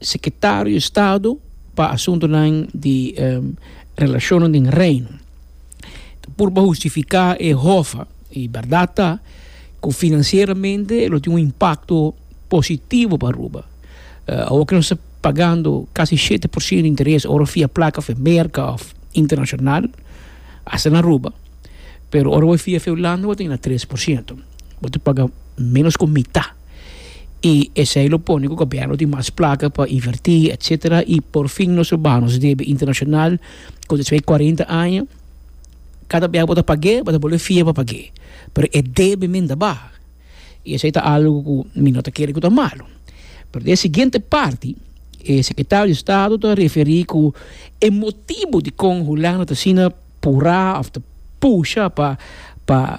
Sekretario di Estado pa Asuntunan di Relashonnan den Reino ta purba hustifiká e hofa, i bèrdat ta ku finansieramente e lo tin un impakto positivo pa Aruba. Awor ku nos ta pagando kasi shete por siento di interes ora fia plaka fu Merka òf internashonal, asta na Aruba, pero ora bo fia fu Hulanda bo ta yega na tres por siento, bo ta paga ménos ku mitá. y esey lo pone cu gobierno tin mas placa pa inverti etcetera y por fin nos lo baha nos debe internacional cu despues di cuarenta aña cada bia cu bo ta pague bo ta bolbe fia pa pague pero e debe men ta baha y esey ta algo cu mi no ta kere cu ta malo pero den e siguiente parti e secretario di estado ta referi cu e motibo dicon Hulanda ta asina pura of ta pusha pa pa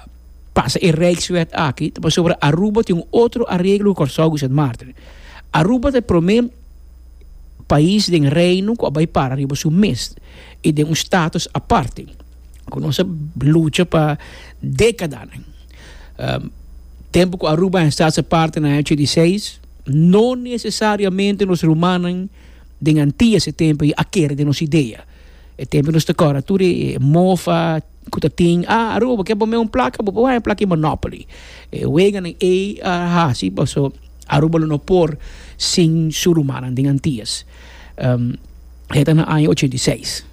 pasa e Rijkswet aki ta pasobra Aruba tin un otro areglo ku Kòrsou ku Sint Maarten. Aruba ta e promé pais den Reino ku a bai para riba su mes i den un status aparte ku nos a lucha pa dekadanan. Tempu ku Aruba a hèn status aparte na aña ochenta i seis no nesesariamente nos rumannan den Antillas e tempu ei a kere den nos idea. E tempu nos ta kòrda tur e mofa. ku ta tin a Aruba bo ke pone un plaka bo por haya plaka di monopoly e weganan ey a hasi paso Aruba lo no por sin su rumannan den Antillas e ta na aña ochenta y seis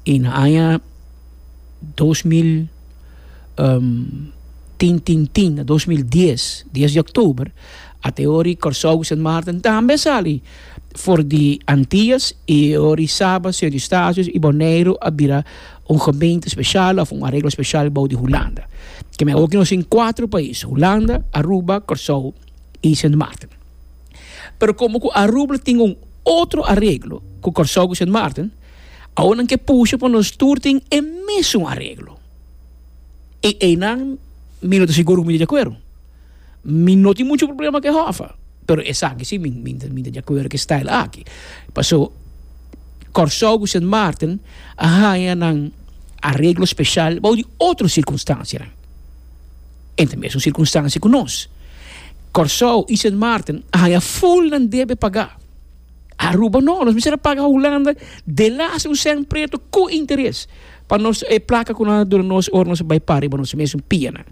y na aña dos mil tin tin tin na dos mil dies dies di octuber a te ori Kòrsou ku Sint Maarten tambe a sali for di Antillas y e ori Saba Sint Eustatius y Boneiru a bira un gemeente special of un areglo special bou di Hulanda. Ke men awor ki nos tin cuatro pais, Hulanda, Aruba, Corsou y Sint Maarten. Pero como cu Arubl tin un otro areglo cu Corsou cu Sint Maarten, awor nan ke pusha pa nos tur tin e mesun areglo. Y eynan mi no ta sigur cu mi ta di acuerdo. Mi no tin mucho problema cu e Hoffa, pero esaki si mi mi ta di acuerdo cu e style aki. Paso Kòrsou cu Sint Maarten a haña nan areglo special bou di otro circunstancianan. E ta mesun circunstancia cu nos. Kòrsou y Sint Maarten a haña full nan debe pagá. Aruba no, nos mester a paga Hulanda de las un sènt preto ku interes pa nos e plaka ku nan a duna nos ora nos a bai para riba nos mesun pianan.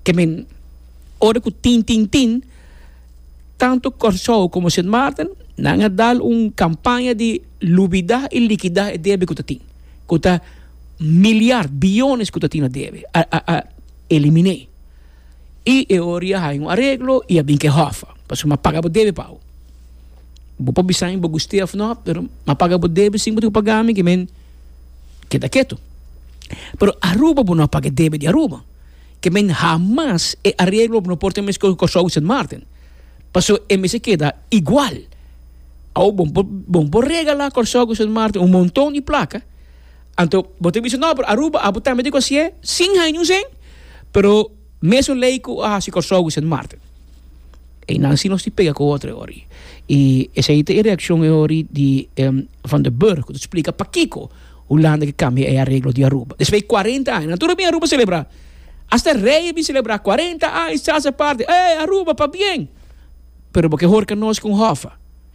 I mean, ora ku tin tin tin tantu Kòrsou komo Sint Maarten nan a dal un kampaña di lubidá i likidá e debe ku ta tin, ku ta miliar, billones ku ta tin na debe, a eliminé. y e ora ya haña un areglo y a bin ke hof pasobra m'a paga bo debe pa ao bo por bisa mi bo guste of no pero m'a paga bo debe sin bo tin cu paga mi ki men keda ketu pero Aruba bo no a paga e debe di Aruba ki men hamas e areglo no por tin mesco cu Corsou y Sint Maarten pasobra e mes a keda igual ao bo por regala Corsou cu Sint Maarten un monton di placa Anto bo ta bisa, No, pero Aruba abo tambe ta kosié sin hañus en, pero mesun lei ku a hasi Kòrsou ku Sint Maarten. Einan si nos tin pega ku otro e ora. I esei ta e reakshon e ora di e Van der Burg ku ta splika pakiko Hulanda ke kambia e areglo di Aruba. Despues di kuarenta aña nan tur a bin Aruba selebrá. Asta rei a bin selebrá kuarenta aña di Sasa Party, Ey Aruba pa bien! Pero bo ke hor ka nos ku un hòfa.